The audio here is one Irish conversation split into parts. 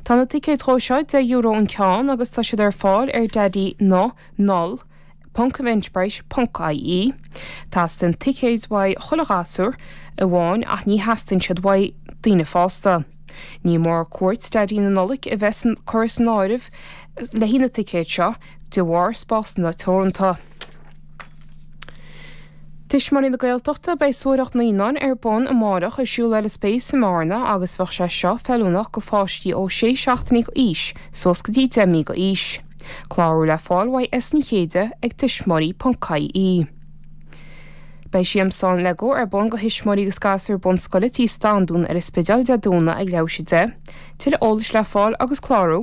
Tá na ticéid dhó seo deich euro an ceann agus tá siad ar fáil ar Daidí na Nollag ponc Eventbrite ponc ie. Teastaíonn ticéad uaidh chuile ghasúr amháin ach ní theastaíonn siad uaidh daoine fásta. Ní mór cuairt Daidí na Nollag a bheith curtha san áireamh le haghaidh na ticéid seo de bharr spásanna teoranta. Tuismitheoirí na Gaeltachta, beidh suathaireacht naíonán ar bun amárach ar siúl ar an Space i mBearna agus bheadh sé seo feiliúnach go pháistí ó sé seachtaine go aois suas go dtí deich mí go aois. Clárú le fáil uaidh S Ní Chéide ag tuismitheoirí ponc IE. Beidh siamsán Lego ar bun go thuismitheoirí agus gasúir bunscoile tí Standún ar an Spidéal Dé Domhnaigh ag leathuair tar éis a deich. Tuilleadh eolais le fáil agus clárú.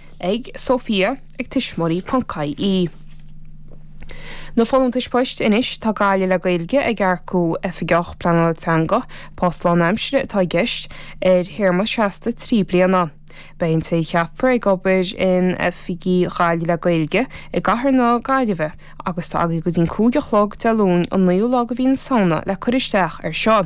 ag Sofia ag tuismitheoirí ponc IE. Na folúntais poist anois, tá Gaillimh le Gaeilge ag earcú Oifigeach Pleanála Teanga, post lánaimsire atá i gceist, ar théarma seasta trí bliana. Beidh an té a cheapfar ag obair in oifigí Ghaillimh le Gaeilge i gcathair na Gaillimhe agus tá agaí go dtí'n cúig a chlog Dé Luain an 9ú lá de mhí na Samhna le cur isteach air seo.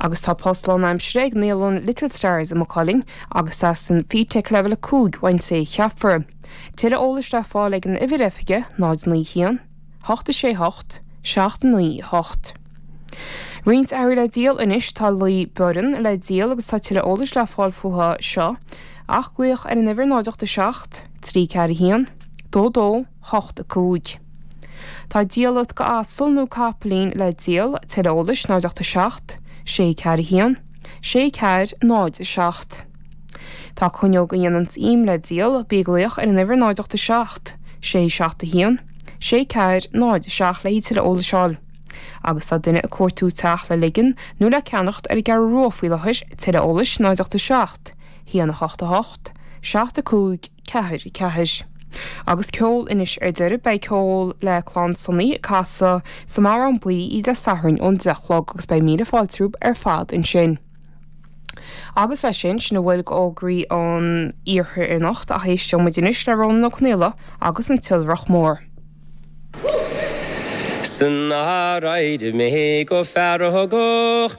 Agus tá post lánaimsire ag naíolann Little Stars i Maigh Cuilinn agus teastaíonn FETAC Leibhéal 5 uaidh an té a cheapfar. Tuilleadh eolais le fáil ag an uimhir oifige 091 868 798. Roinnt earraí le díol anois. Tá lao baineann le díol agus tá tuilleadh eolais le fáil fúthu seo ach glaoch ar an uimhir 087 341 22 hocht a cúig. Tá diallait go asal nó capaillín le díol, tuilleadh eolais, 0 ocht a seacht. Sé ceathair a haon. Sé ceathair, 0 a seacht. Tá cuinneóg a dhéananns im le díol, bí ag glaoch ar an uimhir 0 ocht a seacht. Sé seacht a haon. Sé ceathair, 0 a seacht le haghaidh tuilleadh eolais a fháil. Agus tá duine ag cuartú teach le leigean nó le ceannacht ar an gCeathrú Rua faoi láthair, tuilleadh eolais, 0 ocht a seacht. 1 8 8 7 5 4 4 Agus ceol anois ar deireadh, beidh ceol le Clann Sonny ag casadh sa mBodhrán Buí oíche Dé Sathairn ón deich a chlog agus beidh míle fáilte romhaibh ar fad ansin. Agus leis sin, sin a bhfuil go fhógraí an Iarthair anocht ach éisteoidh muid anois le Rónán Ó Conaola agus an tIolrach Mór. San aer éirigh mé go feargach.